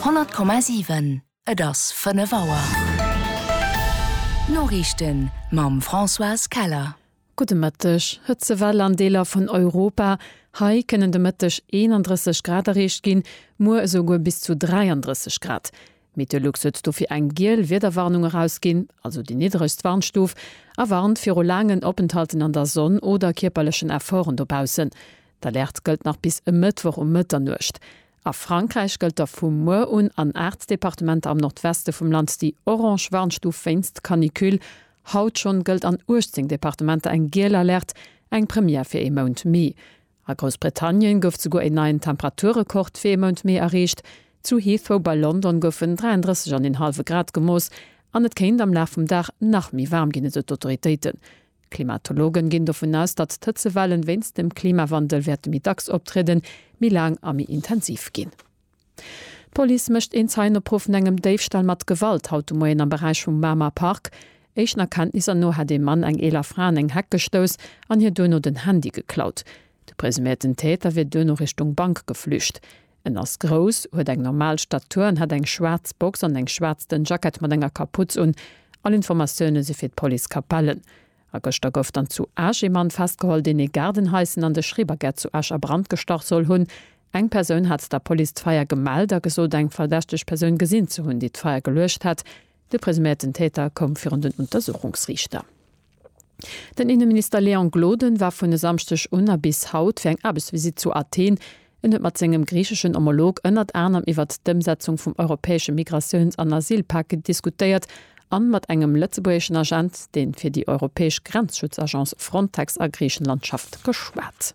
100,7 Et ass 5 Auer. D'Noriichten mam Françoise Keller. Gudde Mëtteg. Hëtzewell an Deeler vun Europa, Hei kënnen de Mëtteg 31 Grad erreecht ginn, muer esou guer bis zu 33 Grad. Meteolux huet dofir eng giel Wiederwarnung erausginn, also déi niddregst Warnstuf, a warnt viru laangen Openthalten an der Sonn oder kierperlechen Efforten dobaussen. D'Alerte gëllt nach bis e Mëttwoch um Mëtternuecht. A Frankräich gëllt da vu muer un an aacht Departementer am Nordweste vum Land déi orange Warnstuf wéinst Canicule. Haut schonn gëllt an 18 Departementer eng giel Alerte, eng Première fir ee Mount Mee. A Groussbritannien gouf souguer een neien Temperaturrekord fir ee Mount Mee erreecht. Zu Heathrow bei London goufen 33 an een hallwe Grad gemooss an et kéint am Laf vum Dag nach méi waarm ginn, esou d'Autoritéiten. Klimatologen ginn dovun aus, datt d'Hëtzewellen wéinst dem Klimawandel wäerte méi dacks optrieden, méi laang a méi intensiv ginn. D'Police mécht een Zeienopruff vun engem Déifstall mat Gewalt haut de Moien am Beräich vum Mamer Park. Éischten Erkenntnisser no hätt ee Mann eng eeler Fra an eng Heck gestouss an hir duerno den Handy geklaut. De presuméierten Täter wier duerno Richtung Bank geflücht. En ass grouss, huet eng normal Statur an hat eng schwaarz Box an eng schwaarz dënn Jackett mat enger Kaputz un. All Informatioune si fir d'Police Capellen. A gëschter gouf dann zu Esch ee Mann festgeholl, deen ee Gaardenhaisen an de Schrebergärt zu Esch a Brand gestach soll hunn. Eng Persoun hat der Police d'Feier gemellt a gesot, eng verdächteg Persoun gesinn ze hunn, déi d'Feier geluecht hätt. De presuméierten Täter koum virun den Untersuchungsriichter. Den Inneminister Léon Gloden war vun e Samschdeg un a bis haut fir eng Aarbechtsvisitt zu Athen. En huet mat sengem griicheschen Homolog ënnert anerem iwwert d'Ëmsetzung vum europäesche Migratiouns an Asylpak diskutéiert a mat engem lëtzebuergeschen Agent, dee fir déi europäesch Grenzschutzagence Frontex a Griichenland schafft, geschwat.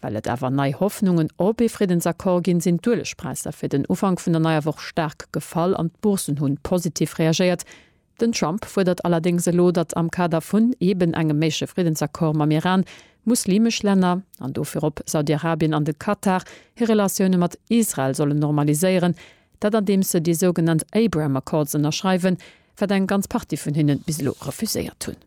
Well et awer nei Hoffnungen op ee Friddensaccord ginn, sinn d'Uelegpräisser fir den Ufank vun der neier Woch staark gefall an d'Bourssen hunn positiv reagéiert. Den Trump fuerdert allerdéngs elo, datt am Kader vun eben engem méigleche Friddensaccord mam Iran, muslimesch Länner, an do virop Saudiarabien an de Katar, hir Relatioune mat Israel sollen normaliséieren, dat andeems se déi sougenannt Abraham Accords ënnerschreiwen, wat eng ganz Partie vun hinnen bis elo refuséiert hunn.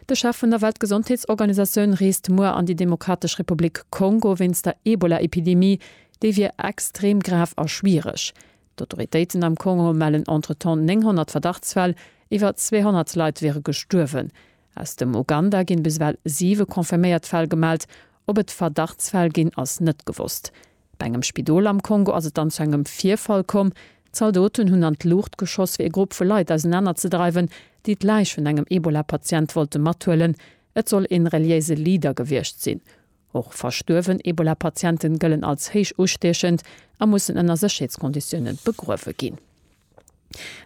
De Chef vun der Weltgesondheetsorganisatioun reest muer an déi Demokratesch Republik Kongo wéinst der Ebola-Epidemie. Déi wier extrem grav a schwiereg. D'Autoritéiten am Kongo mellen entretemps 900 Verdachtsfäll, iwwer 200 Leit wiere gestuerwen. Aus dem Uganda ginn bis ewell siwe confirméiert Fäll gemellt. Ob et Verdachtsfäll ginn, ass net gewosst. Bei engem Spidol am Kongo ass et dann zu engem Virfall komm. Zaldoten hunn an d'Luucht geschoss, fir ee Grupp vu Leit ausenanerzedreiwen, déi d'Läich vun engem Ebola-Patient wollte mathuelen. Et soll ee reliéise Leader gewiescht sinn. Och verstuerwen Ebola-Patienten gëllen als héich ustiechend a mussen ënner Sécherheetskonditiounen begruewe ginn.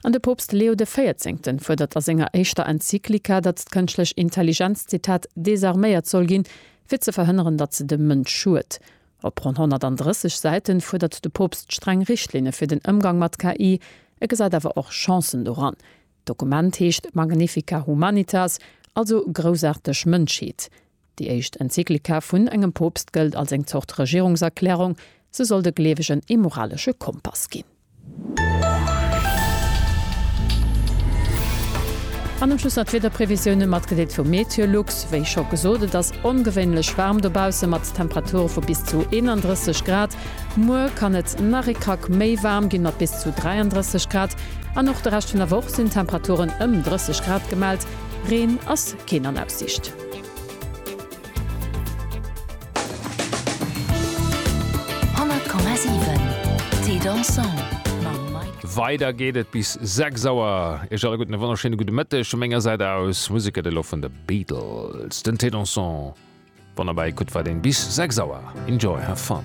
An de Poopst Leo de Véierzéngten fuerdert a senger éischter Enzyklika, datt d'kënschtlech Intelligenz, Zitat, desarméiert soll ginn, fir ze verhënneren, datt se dem Mënsch schued. Op ronn 130 Säiten fuerdert de Poopst streng Richtlinne fir den Ëmgang mat KI. E gesäit awer och Chancen doran. D'Dokument heescht Magnifica Humanitas, also Groussaarteg Mënschheet. Déi éischt Enzyklika vun engem Poopst gëllt als eng Zort Regierungserklärung, se soll de Gleewegen ee moralesche Kompass ginn. An um Schluss nach d'Wiederprevisioune matgedeelt vu Meteolux. Wéi scho gesot, et ass ongewéinlech waarm dobausse mat Temperature vu bis zu 31 Grad. Muer kann et nach ee Krack méi waarm ginn, mat bis zu 33 Grad. An och de Rescht vun der Woch sinn Temperaturen ëm 30 Grad gemellt. Reen ass keen an Aussiicht. Weider geet et bis 6 Auer. Iech alle gutten e wonnerschéine gudde Mëtteg vu menger Säit aus. Musek gëtt elo vun de Beatles, den T-Dansant. Wann der bäi kuckt, war deen bis 6 Auer. Enjoy, have fun!